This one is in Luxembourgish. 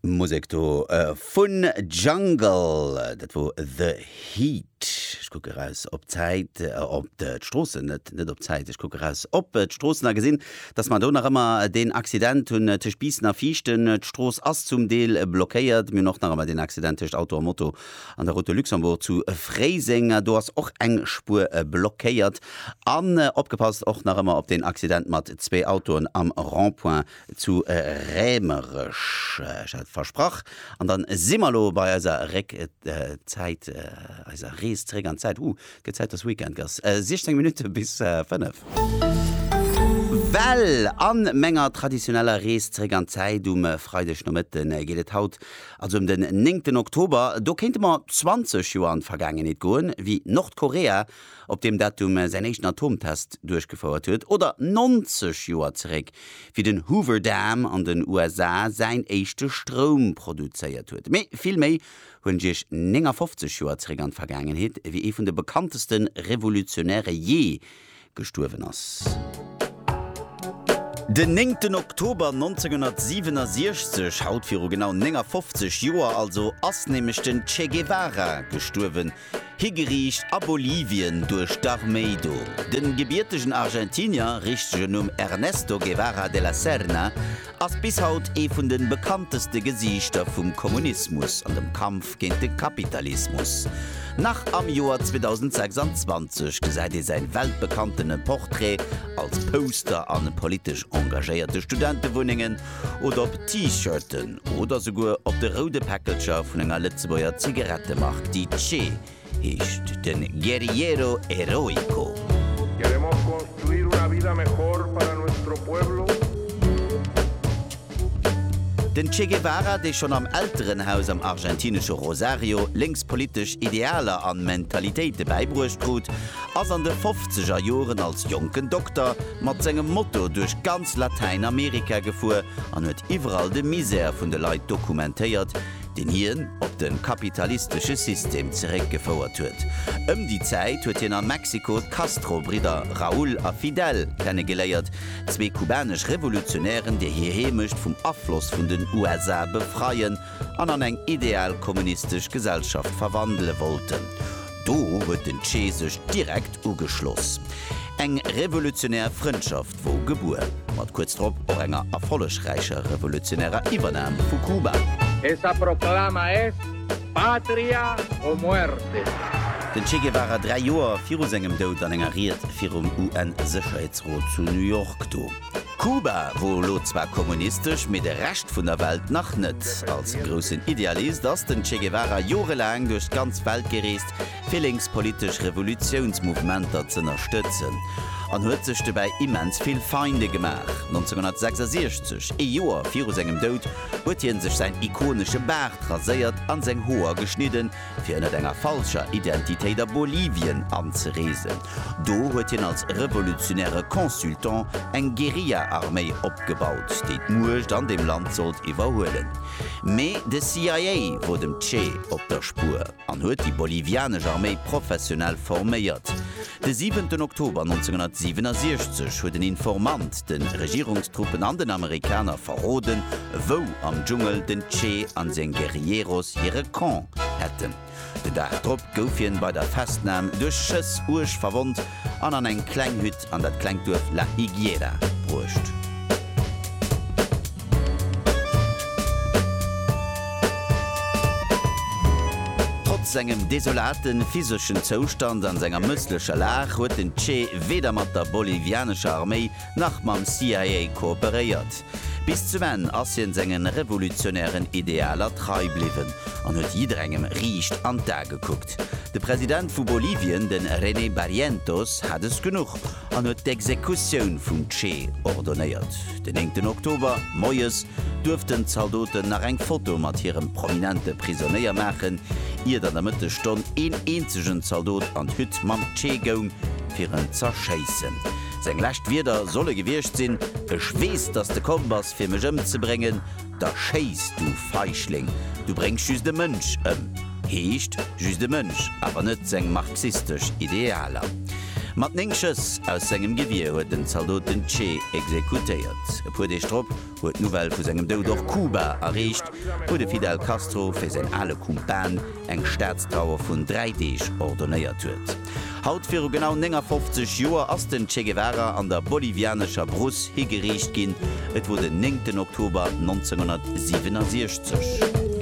Musek do vun Jungle, dat wor The Heat. Ech kucke raus op d'Zäit, op d'Stroossen, net, net op d'Zäit, ech kucke raus op d'Stroossen a gesinn, dass mer do nach ëmmer deen Accident hunn tëscht Biissen a Viichten. D'Strooss ass zum Deel blockéiert. Mir hunn och nach ëmmer deen Accident tëscht Auto a Moto an der Route de Luxembourg zu Fréiseng. Do ass och eng Spuer blockéiert. An opgepasst och nach ëmmer op deen Accident mat zwee Autoen am Rond-point Zu Rämerech, ech hat et versprach. An dann si mer elo bei eiser Réckzäit, eiser Rees zeréck an d'Zäit. Huh, et gëtt Zäit, dass Weekend ass. 16 Minutte bis 5. Well an menger traditioneller Rees zeréck an d'Zäit um Freidegnomëtte geet et haut also em den néngten Oktober. Do kéinte mer 20 Joer an d'Vergaangenheet goen, wéi Nordkorea op deem Datum säin éischten Atomtest duerchgefouert huet, oder 90 Joer zeréck, wéi den Hoover Dam an den USA säin éischte Stroum produzéiert huet. Mee vill méi huelen ech Iech 59 Joer zeréck an d'Vergaangenheet, wéi ee vun de bekannteste Revolutionäre jee gestuerwen ass. Den néngten Oktober 1967, haut viru genau 59 Joer also, ass nämlech den Che Guevara gestuerwen, Higeriicht a Bolivien duerch d'Arméi do. Den gebiertegen Argentinier, richtegen Numm Ernesto Guevara de la Serna, ass bis haut ee vun den bekannteste Gesiichter vum Kommunismus an dem Kampf géint de Kapitalismus. Nach am Joer 2026 gesäit ee säin weltbekanntene Portrait als Poster an politesch engagéierte Studentewunnengen oder op T-Shirten oder souguer op de roude Päckelcher vun enger Lëtzebuerger Zigarettemark, déi Che heescht, de Guerriero Heroico. Den Che Guevara, dee schonn am Elterenhaus am argentinesche Rosario lénks politesch Idealer an Mentalitéite bäibruecht krut, Ass an de fofzeger Joren als jonken Dokter mat sengem Moto duerch ganz Latäinamerika gefuer an huet iwwerall de Misär vun de Leit dokumentéiert, deen hien op de kapitalistesche System zeréckgefouert huet. Ëm déi Zäit huet hien a Mexiko d'Castro-Bridder Raúl a Fidel kennegeléiert, zwee kubanesch Revolutionären, déi hir Heemecht vum Afloss vun den USA befreien an an eng ideal kommunistesch Gesellschaft verwandele wollten. Do huet den Che sech direkt ugeschloss. Eng revolutionär Frëndschaft wor gebuer, mat kuerz drop och enger erfollegräicher revolutionärer Iwwernam vu Kuba. Esa proclama es patria o muerte! Den Che Guevara dräi Joer viru sengem Doud an enger Ried virum UN-Sécherheetsrot zu New York do. Kuba wor elo zwar kommunistesch, mee de Rescht vun der Welt nach net. Als groussen Idealist ass den Che Guevara jorelaang duerch d'ganz Welt gereest, fir lénkspolitesch Revolutiounsmouvementer z'ënnerstëtzen, an huet sech dobäi immens vill Feinde gemaach. 1966, ee Joer viru sengem Doud, huet hie sech säin ikonesche Baart raséiert an seng Hoer geschnidden, fir ënnert enger falscher Identitéit a Bolivien anzereesen. Do huet hien als revolutionäre Consultant eng Guerilla-Arméi opgebaut, déi d'Muecht an dem Land sollt iwwerhuelen. Mee de CIA wor dem Che op der Spuer an huet déi bolivianesch Arméi professionell forméiert. De siwenten Oktober 1967 huet en Informant de Regierungstruppen an den Amerikaner verroden, wou am Dschungel den Che an seng Guerilleros hire Camp hätten. Den Dag drop gouf hien bei der Festnam duerch Schëss uerg verwonnt an an eng kleng Hütt an dat klengt Duerf La Higuera bruecht. Trotz sengem desolate physeschen Zoustand an senger mësslecher Lag huet den Che weder mat der bolivianescher Arméi nach mam CIA kooperéiert. Bis zum Enn ass hien sengen revolutionären Idealer trei bliwwen an huet jidderengem riicht an d'A gekuckt. De President vu Bolivien, den René Barrientos, hat es genuch. an huet d'Exekutioun vum Che ordonéiert. Den néngten Oktober moies duerften d'Zaldoten nach eng Foto mat hirem prominente Prisonéier maachen, iert an der Mëttesstonn een eenzegen Zaldot an d'Hütt mam Che goung, fir en z'erschéissen. Seng lescht Wierder solle gewiescht sinn, Ech weess, dass de komm bass, fir mech ëmzebréngen. da schéiss du Feichling, du bréngs just e Mënsch ëm. Heescht, just e Mënsch, awer net seng marxistesch Idealer. Mat néng Schëss aus sengem Gewier huet den Zaldot den Che exekutéiert. E puer Deeg drop huet d'Nouvelle vu sengem Doud och Kuba erreecht, wou de Fidel Castro fir säin ale Kumpan eng Staatstrauer vun dräi Deeg ordonéiert huet. Haut viru genau 59 Joer ass den Che Guevara an der bolivianescher Brousse higeriicht ginn. Et wor den 9 Oktober 1967.